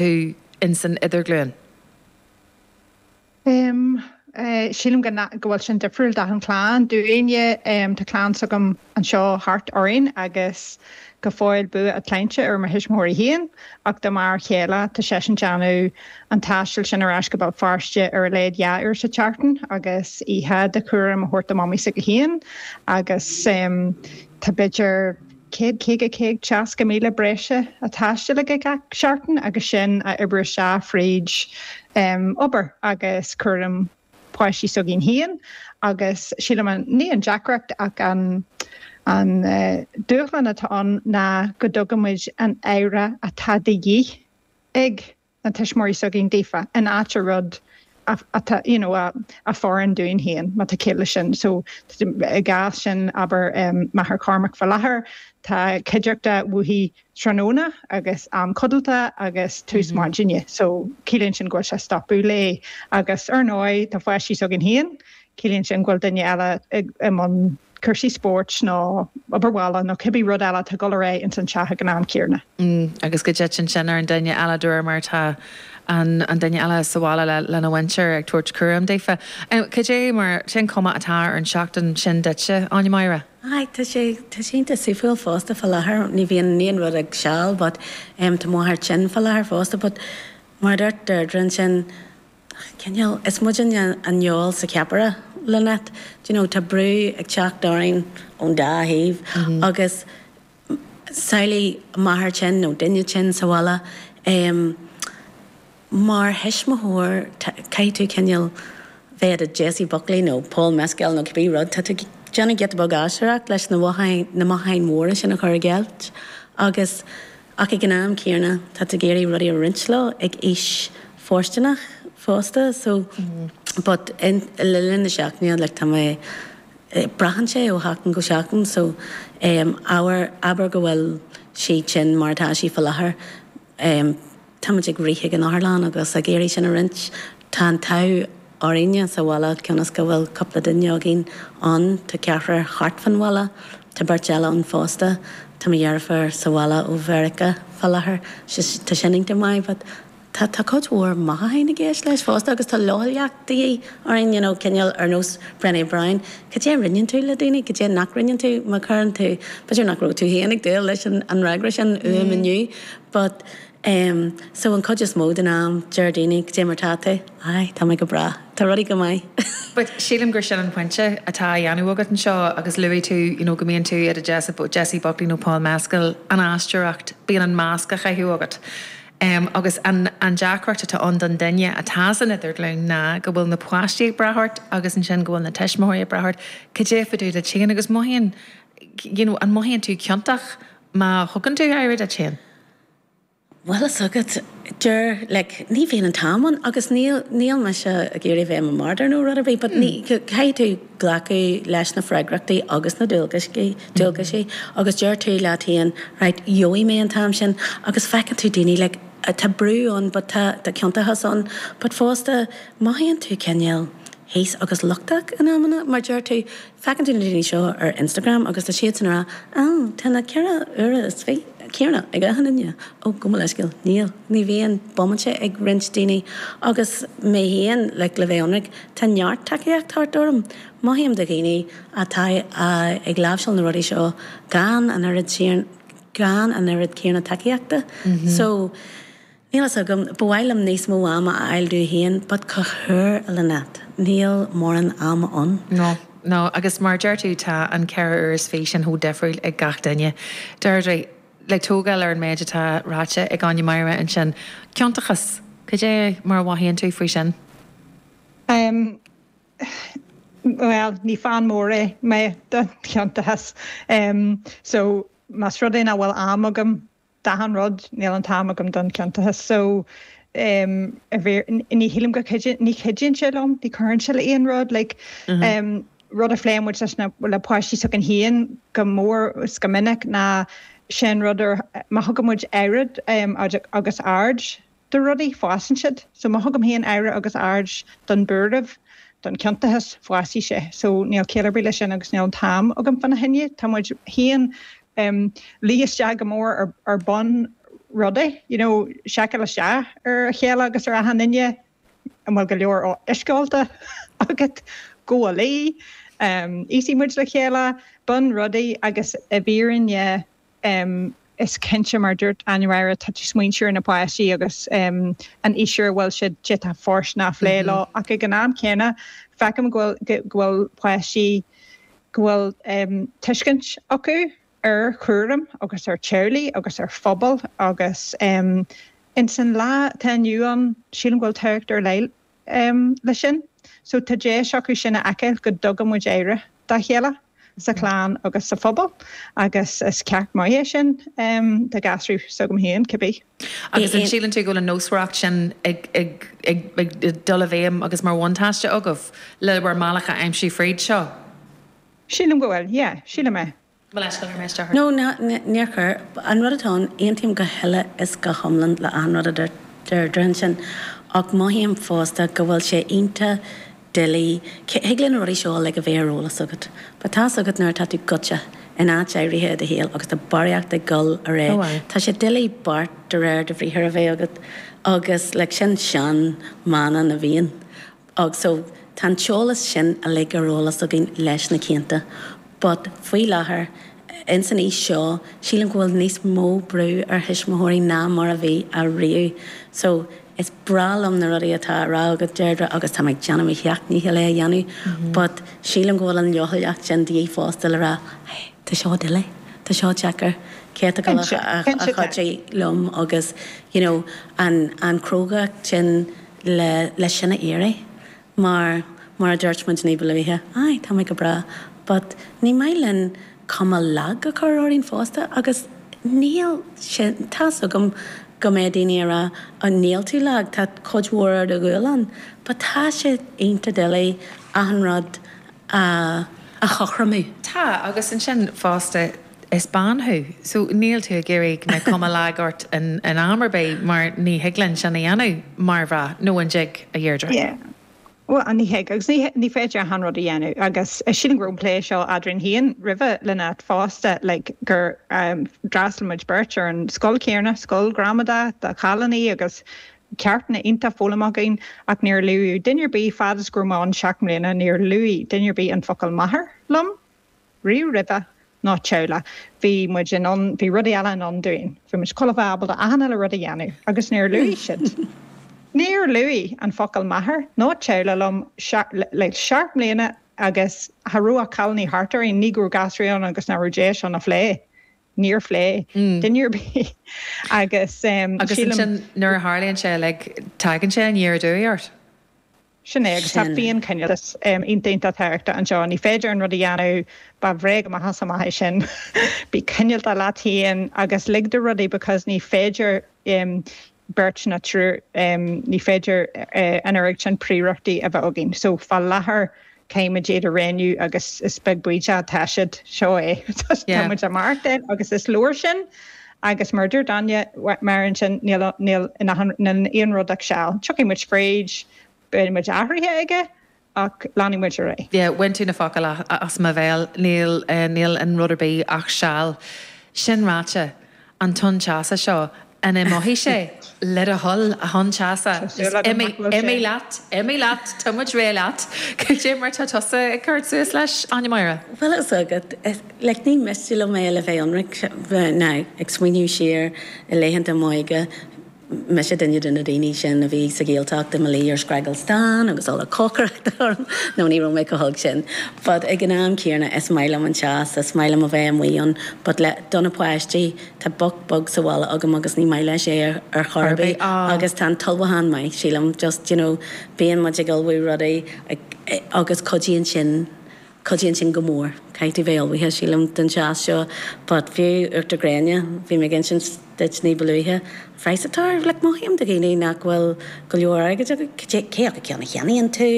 thú ins an idirghlúin? Em. eh. sílim go na, go bhfuil sin difriúil d'achan chlann, do dhaoine, em. tá clann s'agam anseo thart orainn agus go fóill bua a tsláinte ar mo thuismitheoirí féin ach do m'fhear céile, tá seisean ag déanamh an taistil sin ar ais go Béal Feirste ar a laghad dhá uair sa tseachtain agus oíche de chúram a thabhairt do mamaí s'aige féin agus, em. tá b'fhéidir. 150-160 míle breise a thaisteal gach seachtain agus sin a oibriú isteach fríd obair agus cúram páistí s'againn féin agus sílim ní an deacracht ach an dúshlán atá ann ná go dtugann muid an aire atá de dhíth ag na tuismitheoirí s'againn daofa in áit an rud atá you know a fhóireann dúinn féin má tá ciall leis sin so i gcás sin abair máthair Chormac fá láthair tá cuideachta uaithi tráthnóna agus am codalta agus tús maidine so ciallaíonn sin go bhfuil sé ag stopadh léi agus ar ndóigh tá páistí s'againn féin Ciallaíonn sin go bhfuil duine eile i mbun cúrsaí spóirt nó obair bhaile nó cibé rud eile atá ag dul ar aghaidh ins an teach ag an am céarna. Agus go dtiteann sin ar an duine eile de réir mar atá an duine eile sa bhaile lena mhuintir ag tabhairt cúraim daofa. Cad é mar sin cuma atá ar an tseachtain sin duitse, Áine Máire? Aye, tá sé, tá sé iontach suimiúil fosta fá láthair, ní bhíonn in aon rud ach seal but tá mo mháthair tinn fá láthair fosta but mar a dúirt Deirdre ansin, cineál, is muidinne an fheoil sa cheapaire, Lynette, you know, tá brú ag teacht orainn ón dá thaobh agus samhlaigh máthair tinn nó duine tinn sa bhaile, em, mar thuismitheoir tá, caithfidh tú cineál bheith i do Jessie Buckley nó Paul Mescal nó cibé rud, tá tú ag déanamh giota beag aisteoireacht leis na, na mothúcháin mhóra sin a chur i gceilt agus. Ach ag an am céanna, tá tú ag iarraidh rudaí a roinnt leo ag aois fóirsteanach fosta. So, but, in, le linn na seachtaine, like, tá mé, braitheann sé ó sheachtain go seachtain. So, em, abhar, abair go bhfuil sí tinn mar atá sí fá láthair, em, táimid ag rith ag an otharlann agus ag iarraidh sin a roinnt. Tá an t-ádh. Orainne sa bhaile, cionn is go bhfuil cúpla duine againn ann, tá ceathrar thart fan bhaile, tá beirt eile ann fosta, tá mo dheirfiúr sa bhaile ó Mheiriceá fá láthair, tá sin iontach maith, but tá, tá cuid mhór machnaimh i gceist leis fosta agus tá leochaileacht de dhíth orainn, you know, cineál ar nós Brené Brown, cad é a roinneann tú le daoine, cad é nach roinneann tú, má chuireann tú, b'fhéidir nach raibh tú féin ag dúil leis an fhreagra sin uaim inniu, but. Em, so an cuid is mó den am, deir daoine, Cad é mar atá tú? Aye, tá mé go breá. Tá rudaí go maith. But sílim gur sin an pointe atá á dhéanamh agat anseo agus luaigh tú, you know, go mbíonn tú i do Jess, Jessie Buckley nó Paul Mescal, an aisteoireacht, bíonn an masc á chaitheamh agat. Em, agus an, an deacracht atá ann don duine atá san idirghlúin ná go bhfuil na páistí ag brath ort agus ansin go bhfuil na tuismitheoirí ag brath ort, cad é fá dtaobh díot féin agus mothaíonn, you know, an mothaíonn tú ciontach má thugann tú aire duit féin? Bhuel tá a fhios agat, dáiríre, like, ní bhíonn an t-am ann agus níl, níl mise ag iarraidh a bheith i mo martyr nó rud ar bith but ní, caithfidh tú glacadh leis na freagrachtaí agus na dual, dualgaisí agus deir tú leat féin right, gheobhaidh mé an t-am sin agus feiceann tú daoine like, tá brú ann but tá, tá ciontachas ann but fosta mothaíonn tú cineál thíos agus lochtach in amanna mar deir tú, Feiceann tú na daoine seo ar Instagram agus tá siadsan ag rá, Á, tá na ceithre huaire is fiche céanna ag achan duine. Ó, gabh mo leithscéal, níl. Ní bhíonn bomaite ag roinnt daoine. Agus mé féin, like, le bheith ionraic, tá neart tacaíocht thart orm. Mothaím do dhaoine atá ag láimhseáil na rudaí seo gan an oiread céanna tacaíochta. So. Níl fhios agam, ba mhaith liom níos mó ama a fháil domh féin but cogar Lynette, níl mórán ama ann. No, no, agus mar a deir tú, tá an ceithre uair is fiche sin chomh difriúil ag gach duine. Deirdre, le tógáil ar an méid atá ráite ag Áine Máire ansin, ciontachas, cad é mar a mhothaíonn tú faoi sin? Em, bhuel, ní fan mór é mé don chiontachas, em so más rud é nach bhfuil am agam D'achan rud, níl an t-am agam don chiontachas. So, em, i bhfírinne, ní shílim go, ní chuidíonn sé liom, ní chuireann sé le aon rud, like, em, rud a phléann muid leis na, le páistí s'againn féin go mór is go minic ná, sin rud ar, má thugann muid aire, em, agus aird, do rudaí, fásann siad. So má thugaim féin aire agus aird don buaireamh, don chiontachas, fásfaidh sé. So níl ciall ar bith leis sin agus níl an t-am agam fána choinne. Tá muid féin ag luí isteach go mór ar ar bunrudaí, you know, seiceáil isteach ar a chéile agus ar achan duine, an bhfuil go leor uisce ólta agat, gabh a luí, um íosfaidh muid le chéile, bunrudaí agus i bhfírinne, em, is cinnte, mar dúirt Áine Máire, tá tú ag smaoineamh ar na páistí agus, em, an aois ar a bhfuil siad, cad é atá fóirsteanach a phlé leo ach ag an am céanna, feicim go bhfuil, go bhfuil páistí, go bhfuil, em, tuiscint acu ar chúram agus ar teaghlaigh agus ar phobal agus, em, in san lá atá inniu ann, sílim go bhfuil tábhacht ar leith, um, leis sin. So tá deis acu sin a fheiceáil go dtugann muid aire dá chéile sa chlann agus sa phobal agus is ceacht maith é sin um, do ghasúraí s'agam féin cibé. Agus an síleann tú go bhfuil an nósmhaireacht sin ag, ag, ag, ag dul i bhfeidhm agus mar bhuntáiste agaibh le bhur mbealach a aimsiú fríd seo? Sílim go bhfuil, yeah, sílim é. No, níor chuir. An rud atá ann, aontaím go huile is go hiomlán le achan rud a dúirt Deirdre ansin, ach mothaím fosta go bhfuil sé iontach doiligh, thig le na rudaí seo a like a bheith ar eolas agat, but tá 's agat nuair atá tú gaibhte in áit áirithe i do shaol agus tá barraíocht ag goil ar aghaidh, tá sé doiligh beart de réir do bhriathair a bheith agat agus like sin sean-mhana na bhFiann. Agus so, tá an t-eolas sin uilig ar eolas againn leis na cianta, but faoi láthair, ins an aois seo, sílim go bhfuil níos mó brú ar thuismitheoirí ná mar a bhí ariamh. So, is breá liom na rudaí atá á rá agat, Deirdre, agus táim ag déanamh mo sheacht ndícheall é a dhéanamh, but sílim go bhfuil an leochaileacht sin de dhíth fosta le rá, hey, tá seo doiligh, tá seo deacair, an dtig leat cuidiú liom agus, you know, an chrógacht sin. le sin a iarraidh mar, mar a dúirt muid ní ba luaithe, aye, tá mé go breá but ní maith linn cuma lag a chur orainn fosta agus níl sé, tá's agam go mbeidh daoine a' rá oh níl tú lag, tá cuid mhór ar do ghualainn but tá sé iontach doiligh achan rud a, a chothromú. Tá, agus ansin fosta Is bean thú, so níl tú ag iarraidh go mbeadh cuma lag ort in am ar bith mar ní thig linn sin a dhéanamh mar mhná, nó an dtig, a Dheirdre? Yeah. Bhuel, ní thig agus ní féidir achan rud a dhéanamh agus sílim go raibh an plé seo eadrainn féin roimhe Lynette fosta, like, gur d'fhreastail muid beirt ar an scoil chéanna, scoil ghramadai do chailíní agus ceachtanna iontacha foghlamtha againn ach níor luaigh duine ar bith, fad is go raibh mé ann seacht mbliana, níor luaigh duine ar bith an focal 'máthair' liom. Riamh roimhe, ná teaghlach, bhí muid in ann, bhí rud eile i ndán dúinn, bhí muid ag gabháil a bheith ábalta achan uile rud a dhéanamh, agus níor luaigh siad, níor luaigh an focal máthair ná teaghlach liom le seacht mbliana agus cha raibh ach cailíní thart orainn, ní go raibh gasúraí ann agus nach raibh deis seo a phlé, níor phlé duine ar bith agus sílim. Agus ansin nuair a tharlaíonn sé, like, tagann sé aniar aduaidh ort. Sin é, agus tá an féinchineáltas iontach tábhachtach anseo. Ní féidir achan rud a dhéanamh, ba bhréag amach is amach é sin. Bí cineálta leat féin agus lig do rudaí because ní féidir beirt ná triúr, ní féidir an oiread sin prioireachtaí a bheith againn. So fá láthair caithfimid iad a roghnú agus cibé cad é atá siad. Seo é. Tá muid ag maireachtáil agus is leor sin. Agus mar a dúirt Áine, mar ansin níl aon rud ach seal. Tiocfaidh muid fríd, beidh muid athraithe aige, ach leanfaidh muid ar aghaidh. Yeah, bhain tú na focail as mo bhéal, níl, níl in rud ar bith ach seal. Sin ráite, an tonn teasa seo, an imeoidh sé? Le do thoil, a thonn teasa, is imigh leat, imigh leat, tá muid réidh leat. Cad é mar tá tusa ag cur suas leis, Áine Máire? Bhuel, Like, ní miste liom é le bheith ionraic, now, ag smaoineamh siar i laethanta m'óige, mise duine de na daoine sin a bhí sa Ghaeltacht i mo luí ar scragall stáin agus ola cócaireachta orm, no, ní raibh mé chomh holc sin, but ag an am céanna, is maith liom an teas, is maith liom a bheith amuigh ann, but le, do na páistí, tá boc beag sa bhaile agam agus ní maith leis é ar chor ar bith, agus tá an t-ullmhúchán maith, sílim, just, you know, bíonn muid ag ullmhú rudaí, ag, agus cuidíonn sin. Cuidíonn sin go mór. Caithfidh bheith ullmhaithe, sílim, don teas seo, but fiú uachtar gréine, bhí mé ag insint duit ní ba luaithe, an praghas atá air, like mothaím do dhaoine nach bhfuil go leor airgid acu, cé acu ceann a cheannaíonn tú,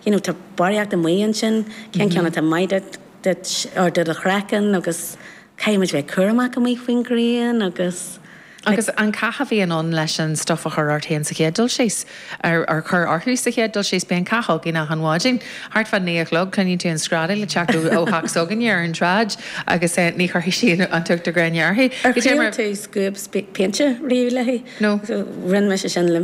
you know, tá barraíocht amuigh ansin, cén ceann atá maith duit, duit, or do do chraiceann agus caithfimid bheith cúramach amuigh faoin ghrian agus. Agus an cath a bhíonn ann leis an stuif a chur ort féin sa chéad dul síos, ar a chur orthu sa chéad dul síos, bíonn cath againn achan mhaidin. Thart fá naoi a chlog, cluineann tú an screadaíl ag teacht ó theach s'againne ar an tsráid agus ní chuirfidh sí an t-uachtar gréine uirthi. Ar thriail tú scuab péinte riamh léi? Rinne mise sin le mo.